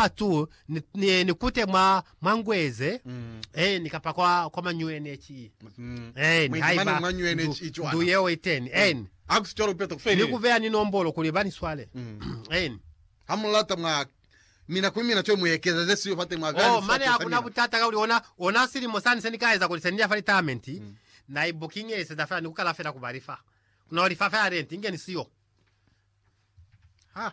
patu ni kute mwa ngweze ni kapa kwa manyuene ki ni haiba ndu yeo iteni ni ku beya ni nombolo kuli ba ni swale. Ha mu lata mwa mina kuli mina cwale mu ekezeze siyo fateni mwa beya ni sifakelo sa mina. Mane hakuna butata kakuli ona, ona silimo sani se ni ka eza kuli se ni ya fa litaamenti na i bukingiseza fela ni ku kala fela ku ba lifa. Ku no lifa fela renti inge ni siyo. Ha.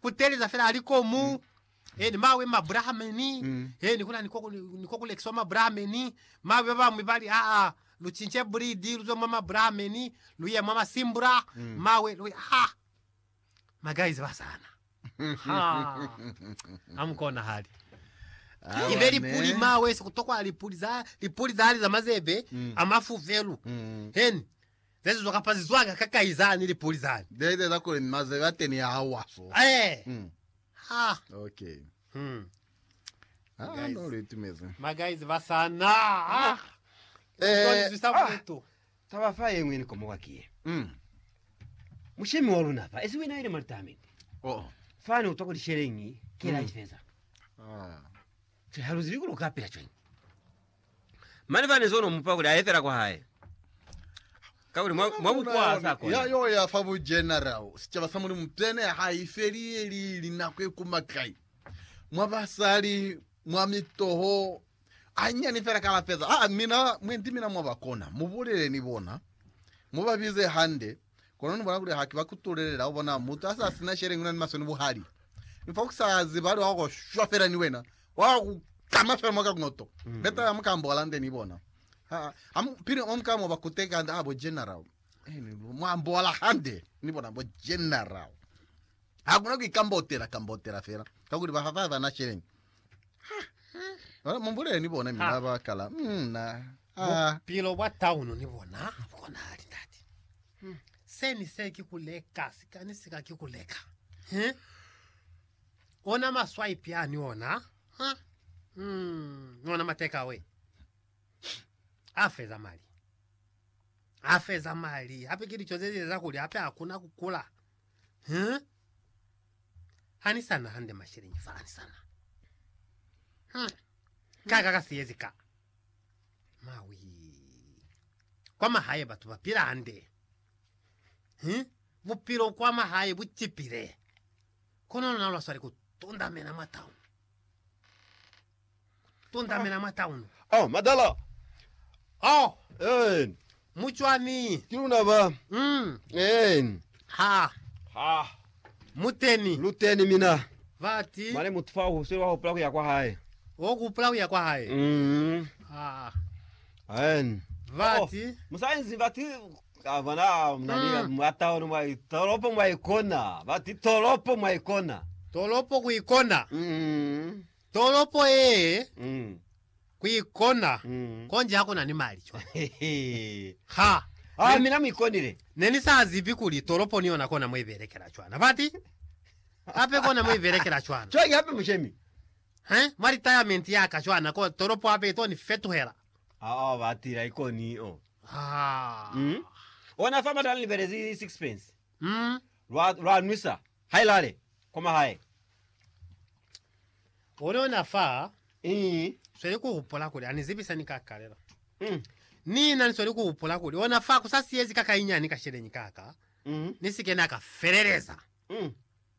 kuteleza fela ali ko mu mm. eni mawe mabrahameni mm. eni kuna niko niko kulekiswa mabrahameni mawe baba mwe bali a a luchinche bridi luzo mwa mabrahameni luye mwa masimbura mm. mawe luye ha ma guys basana ha amkona hali ibe lipuli mawe sikutokwa lipuli za lipuli za ali za mazebe mm. amafuvelu mm. eni Ze zizwa kapa zi zwanga ka kai zani lipuli zani. Ze iteza kuli ni mazelu a teni a hauha so. Ee. Mm. Ha. Okay. Hmm. Ah, Guys. no lu itumeze. Ma guys ba sana. Ah. Eh, Toni zwisa ah. bodutu. Taba fa yengwe ni komoka ki ye. Mm. Mushemi wa luna fa esi wina ile malitamende. Oh. Fani utwa kuli shelengi kela Mm. ifeza. Ah. Che haluzi likulu kapila chwenyi. Mane fani zono mupa kuli aefela kwa hae. Kakuli mwa, mwa bukwa ha sa kona. Ya yo ya fa bu general sicaba sa Mulimu pene ha i feleli linako e kuma kai. Mwa basali, mwa mitoho, anyani fela ka la feza. Ah, mina, mwendi mina mwa ba kona. Mu bulele ni bona. Mu ba bize hande. Kono ni bona kuli haki ba kutulelela ho bona mutu ha sa sina sheleñi una ni masoni buhali. Mi fa kusa hazi bali wa ko shwa fela ni wena. Wa ku kama fela mwa ka kunoto. Mm. Beta ya muka mbola nde ni bona. Ha, ha mu, pili o muka mo ba kuteka hande, ah, bo general. Eh, ni mwa mbola hande. Ni bona bo general. Ha kuna ku ikambotela, kambotela fela. Ka kuli ba ha ba na sheleñi. Bona, mumbulele ni bona mi Ha. ba kala mm, na ah, Bupilo bwa taunu ni bona ha bu konahali ndati. Se ni se ki ku leka, sika ni sika ki ku leka. He? Ona maswaipi a ni ona. Ha? Mm, ona mateka we. A feza mali. A feza mali. Hape ki lico ze li eza kuli hape hakuna ku kula. Huh? Anisana hande masheleñi fa anisana. Huh? Kaka ka siyezi ka. Mawi. Kwa mahaye batu ba pila hande. Huh? Bupilo kwa mahaye bu cipile. Kono lona lwa swali ku tundamena mwa town. tundamela mwa taunu. Oh, madala! Oh, Amen. mucwani! Ki luna ba. Mm. Amen. Ha. Ha. Muteni. Luteni mina. Bati. Mane mutu fa uhuswile wa hupula kuya kwa hae. Wo kupula kuya kwa hae. Mm. Ha. Amen. Bati. Oh, musainzi bati kavana mnani Mm. mwa taunu mwa tolopo mwa ikona. Bati tolopo mwa ikona. Tolopo ku ikona. Mm. Tolopo yee kuikona konji hakuna ni mali cwa. Ha Ah, mina muikonile. nenisazibi kuli tolopo ni yona kona muibelekela cwana. Fati hape kona muibelekela cwana. Cwaki hape mushemi. He, mwa retirement yaka cwana ko tolopo hape ito ni fetuhela. Ah, ah, batila ikoni oh. Ah. Mm. Ona fa batana libelezi sixpence. Umm lwa lwa nwisa hai lale kwa mahae. Ono na fa Ii. sweli ku hupula kuli ani zibisa ni ka kalela. Mm. Ni na ni sweli ku hupula kuli ona fa ku sa siyezi ka kainyani ka sheleñi ka ka, Mm. ni si ke na ka feleleza. Mm.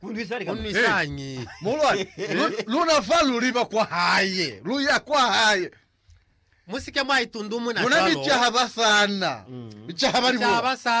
Kunwisañi? Muhulwani, lu, luna fa luli ba kwa hae, lu ya kwa hae. Musike mwa itundumuna Luna ni cwalo. caha ba sana, ni caha ba Ni caha libuwa. ba sana.